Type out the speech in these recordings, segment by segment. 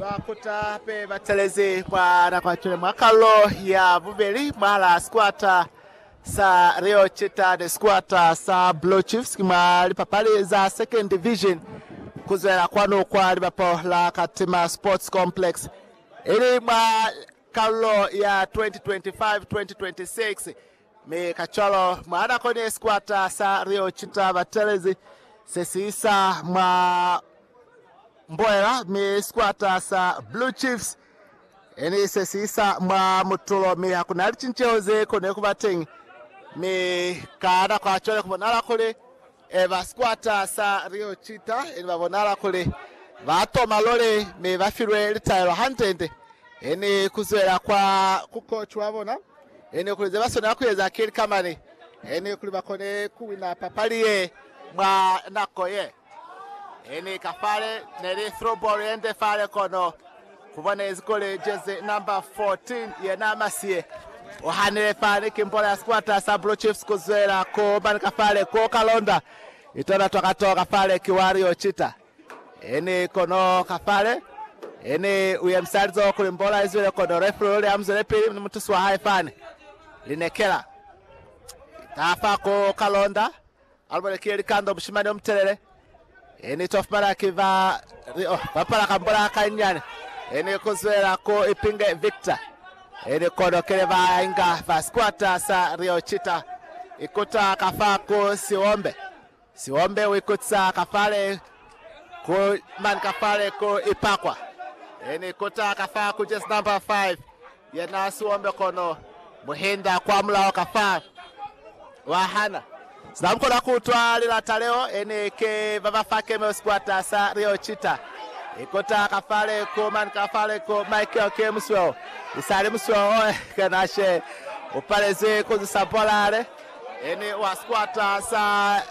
Bakota be batelezi kwa nako ya cwale mwa kalo ya bubeli mwa la sikwata sa Rio Chita ni sikwata sa Blue Chiefs ki mwa lipapali za Second Division kuzwela kwanu kwa libapo la Katima Sports Complex ili mwa kalo ya 2025-2026 Mi kacwalo, mwa nako ni ye sikwata sa Leo ki ta batelezi se si isa mwa mboela, mi sikwata sa Blue Chiefs eni se si isa mwa mutulo, mi ha ku na licinceho ze koni ku ba teñi. Mi ka nako ya cwale ku bonahala kuli E ba sikwata sa Rio Cheetah e ne ba bonala kuli ba toma lole mi ba filwe litaelo hande-nde. E ni ku zwela kwa ku koci wa bona e ne kuli ze ba swanela ku eza ki lika mani e ni kuli ba kone ku wina papali ye mwa nako ye e ni ka fale. Ne li through ball ye nde fale kono. Kubona inzi kuli jezi number 14 yena Masie uhanile fani ki mbola ya sikwata sa Blue Chiefs kuzwela ku mani ka fale kwo kalonda itona twa kato ka fale ki Wario Chita ini kono ka fale ini uyemisa lizoho kuli mbola izwele kono referee uli amuzwele pili ni mutusi wa hae fani linekela tafa ku kalonda Albert ki likando mushimani omutelele ini to fumana ki ba li oh bapala kambola kanyani ini kuzwela ku ipinge Victor ini kono kile ba inga fa squatter sa Rio Chita ikuta ka fa ku siwombe siwombe uikutisa ka fale ku man ka fale ku ipakwa ini kuta ka fa ku just number 5 Ya na siombe kono mu hinda kwa mulaho ka fa wa hana. Sina mu kona ku utwa lilata leo, e ne ke ba ba fa Camels kwata sa Rio Cheetah. I kota ka fa le ko mani ka fa le ko. Michael ke musweo, i sa li musweo o kena she. U palezwi ku zisa bola le, e ni wa sikwata sa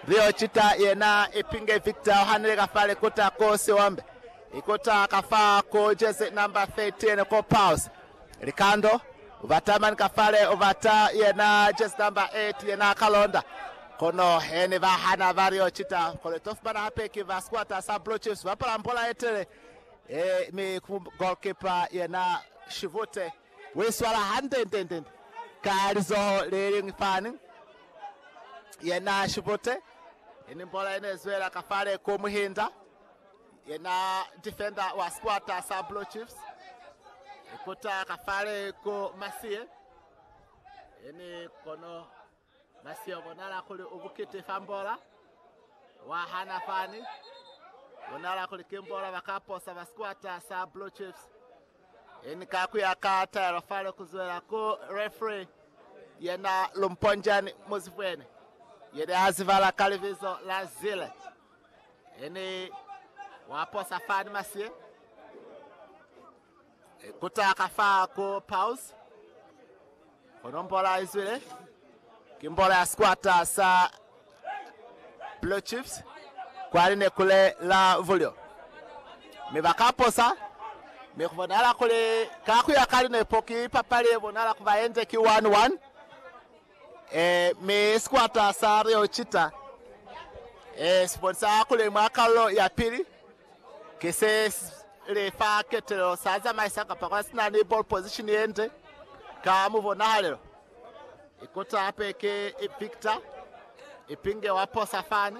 Rio Cheetah. Yena ipinge Victor o hanile ka fa le kota ko siombe. Ikota ka fa ko jezi number 13 ko Pulse. Likando ubata mani ka fale ubata yena jezi number 8 yena Kalonda. Kono heni ba hana ba lio cita kono ito fumana hape ki ba squatter sa Blue Chiefs bapala mbola yetele e mi ku goalkeeper yena Shivute. Wi swala hande nde nde nde ka lizoho le lingi fani yena Shivute. Ini mbola ine zwela ka fale ko Muhinda. Yena defender wa sikwata sa Blue Chiefs ikuta kafale ku Masie ene kono Masie ubonala kuli ubukite fa mbola wahana fani bonala kuli ke mbola bakaposa ba sikwata sa Blue Chiefs ene ka kuya ka taelo fale kuzwela ku referee yena Lumponjani Muzibwene yene azibala ka libizo la Zile. Ene wa posa fani masye kutaka fa ku paws kono mbola izwile ki mbola ya sikwata sa Blue Chiefs kwa linekule la vulyo mi ba ka posa mi ku bonahala kuli ka ku ya ka linepo ki papali ye bonahala ku ba yende ki 1-1. Ee, mi sikwata sa Rio Cheetah, ee, si bonisa kuli mwa kalulo ya pili, ki se li fa ketelelo sa zamaisa kapa kwa si na ni ball position ye nde ka mubonahalelo. Ikuta hape ki Victor Ipinge wa posa fani.